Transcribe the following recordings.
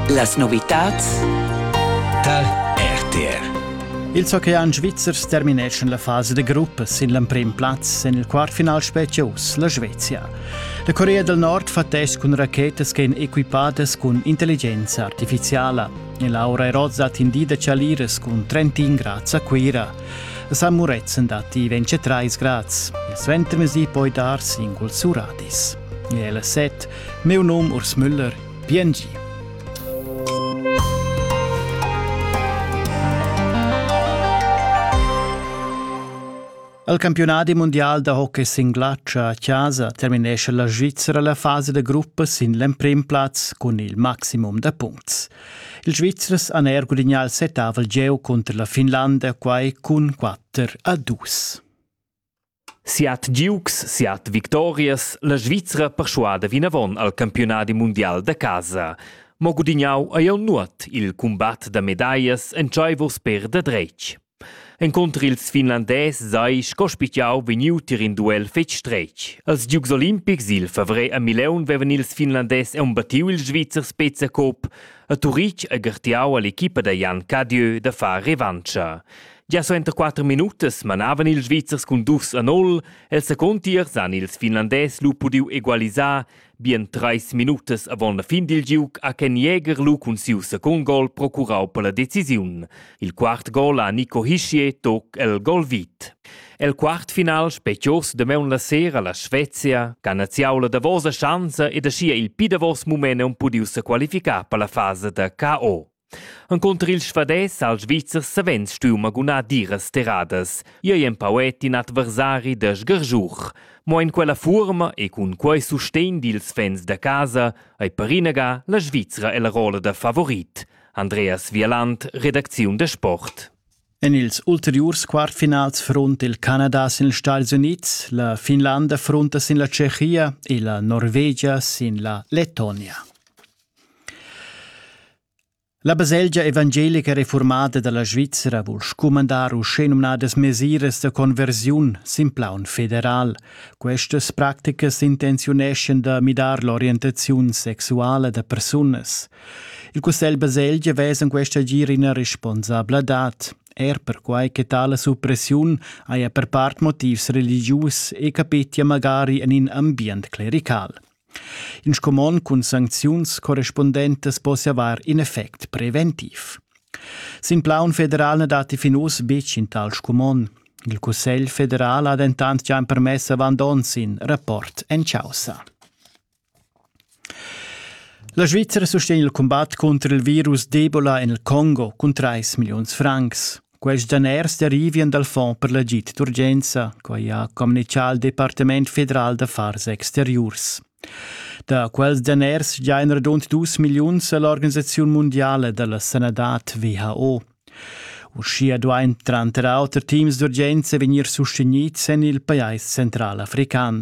Las novitads tal RTR Il hockey en Svizzers termineschan la fasa de gruppa sin l'emprim plaz en il quartfinal specials, la Svezia. La Corea del Nord fa test cun rachetas ch'en equipadas cun intelligenza artificiala e Laura Eroz ha tindida chaliras cun 31 grads a Cuira. La San Murezzan datti 23 grads e suentermesi poi dar singuls suratis. El ha set, miu num Urs Müller, piengi. Al campionadi mondial da hockey sin glatscha a casa terminesce la Svizzera la fase da gruppa sin l'emprim plaz cun il maximum da puncts. Il Svizzers han er gudignà il setavel geo contro la Finlanda, quai cun 4 a 2. Siat giugs, siat victorias, la Svizra perschuada vinavon al campiunadi mundial da casa. Mo gudignau ei jeu nuot il cumbat da medaglias entscheivurs per da dretg. Encunter ils finlandès sei sco spitgau vegniu tier in duel fetg stretg. Als giugs olimpics il favrer a Mileun vevan ils finlandès embattiu il Svizzer Spezia-Cup a Turitg e gartiau all'equipa da Jan Cadieu da far revancha. Gia suenter quatter minutas manavan ils Svizzers cun dus a nol. El secund tiers han ils Finlandès lu pudiu egualisar bien treis minutas avon la fin dil giug ha Ken Jäger lu cun siu secund gol procurau per la decisiun. Il quart gol ha Nico Hischier toc el gol vit. El quartfinal specios damaun la sera la Svezia, che ha naziau la davosa schanza ed aschia il pi davos mument un pudiu sequalificar per la fasa da KO. Encunter il svadès al Svizzer savens stuiu magunar diras terradas. Ei ei empau et in adversari da sgargiuch. Mo en quella fuorma e cun quei sustegn dils fans da casa ei per inaga la Svizra ella rolla da favorit. Andreas Vieland, Redakziun de Sport. En ils ulteriurs quartfinals front il Canada sin ils Stati Unids, la Finlanda fronta sin la Tschechia e la Norvegia sin la Lettonia. La baselgia evangelica reformada dalla Svizra vul scumandar uschenumnadas mesiras da conversiun sin plaun federal. Questas practicas intenziuneschan da midar l'orientaziun sexuala da persunas. Il Cussegl baselgia vesa in questa agir ina responsabladad er perquai che tale suppressiun haja per part motivs religius e capetia magari en in ambient clerical. In scumond cun sancziuns correspundentas possia avar in effect preventiv. Sin plaun federal na datti fin uss betg in tal scumond. Il Cussegl federal ha dentant già empermess avant onns in rapport en chaussa. La Svizzera sustegna il cumbat contro il virus d'Ebola en il Congo cun 3 milliuns francs. Quels daners derivian dal Fond per l'agid d'urgenza, quai ha communitgà il Departament federal d'affars exteriurs. Da quels daners giain radund dus milliuns a l'Organisaziun mundiala da la sanadad WHO. Uschia duain tranter auter teams d'urgenza vegnir sustegnids en il pajais central african.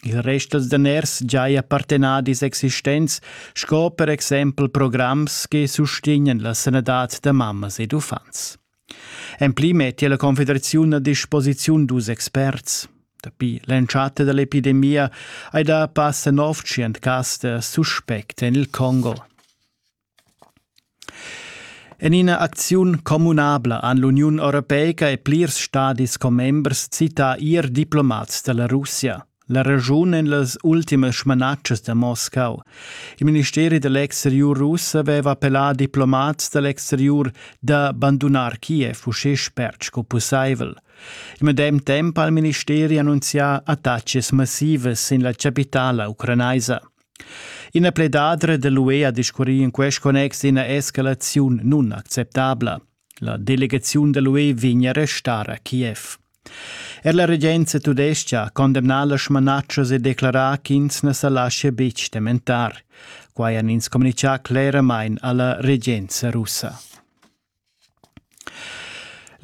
Il rest dals daners giaja partenadis existents sco per exempel programs che sustegnan la sanadad da mammas ed uffants. En pli mettia la Confederaziun a disposiziun dus experts. Dapi l'entschatta da l'epidemia hai dà passa nov tschient cas da suspect en il Congo. En ina acziun communabla han l'Uniun europeica e plirs stadis commembers cità ier diplomats da la Russia. La regiun en las ultimas smanatschas da Moscau. Il ministeri da l'exteriur russ aveva appellà diplomats da l'exteriur da bandunar Kiev uschè spert sco pussaivel. Il medem temp ha il ministeri annunzià attaccis massivas sin la chapitala ucranaisa. Ina pledadra dall'UE ha discurri in quest connex d'ina escalaziun nunacceptabla. La delegaziun dall'UE vegn a restar a Kiev. Er la regenza tudestga ha condemnà las smanatschas e declarà ch'ins na sa laschia betg tementar. Quai han ins communitgà cleramain a la regenza russa.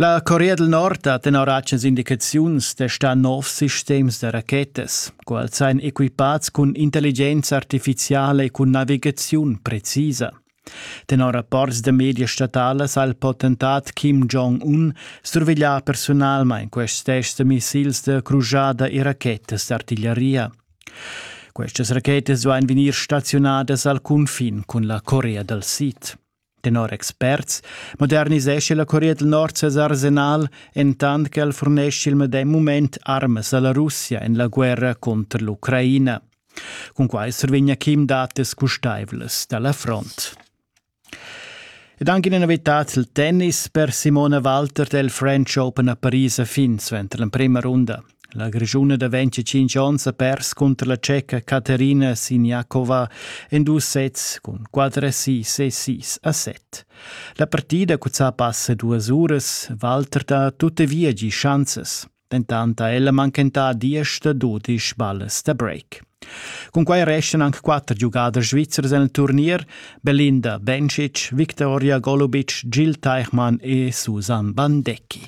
La Corea del Nord ha tenor atschas indicaziuns testà nov sistems da rachetas. Quels ein equipats cun intelligenza artificiala e cun navigaziun precisa. Tenor rapports da media statalas ha il potentat Kim Jong-un surveglià personalmain quests tests da missils da crujada e rachetas d'artiglieria. Questas rachetas duain vegnir staziunadas al cunfin cun la Corea dal Sid. Tenor experts modernisescha la Corea del Nord ses arsenal entant ch'el furnescha il medem mument armas a la Russia en la guerra cunter l'Ucraina. Cunquai survegna Kim datas custaivlas da la front. Ed anche in novità il tennis per Simona Walter del French Open a Paris a fin suenter l'emprima runda. La Grischuna da ventgatg onns ha pers cunter la Ceca Caterina Siniakova en dus sets cun quatter assist e sis a set. La partida cuzzà passa duas uras, Walter ha tuttavia gi schanzas. Dentant ha ella manchentà diesch da dudisch ballas da break. Cun quai restan anche quatter giugaders svizzers en il turnier, Belinda Bencic, Viktoria Golubic, Gil Teichmann e Susan Bandecki.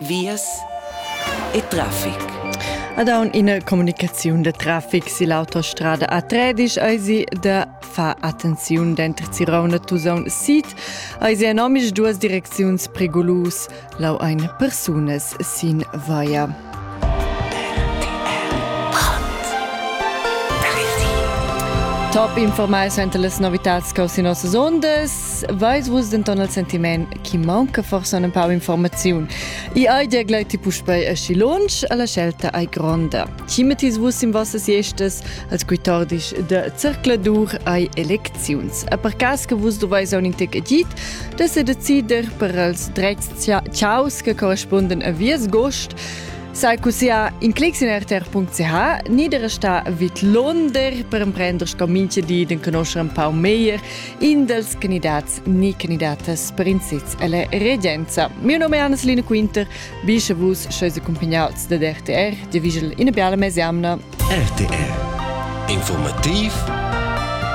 vias e traffic. Ad aun ina comunicaziun de traffic si l'autostrada A13 eisi de fa attenziun denter Zirona Tusaun Sid eisi en omisch duas direcziuns pregulus lau ein persunas sin vaia. Top informais enter las novitats cau sin nossas ondas veis vus denton il sentiment chi maunca forsa un pau informaziun. I ai dir glei ti puspei aschi lunsch, alla scelta ai gronda. Chi mettis vus in vossas iestas als quitordis de circladur ai elecziuns. A per cas che vus doveis a un intec edit, de se decider per els dreits ciaus che corresponden a vies gost, Sai cusia in clics in rtr.ch, nieder sta vid Londer per emprender sco minche di den conoscer un pau meglier in dels candidats ni candidatas per in sitz alla regenza. Mio nome è Anna-Selina Quinter, bisce vus scheis accompagnats da RTR, di vigel ina bella mesiamna. RTR. Informativ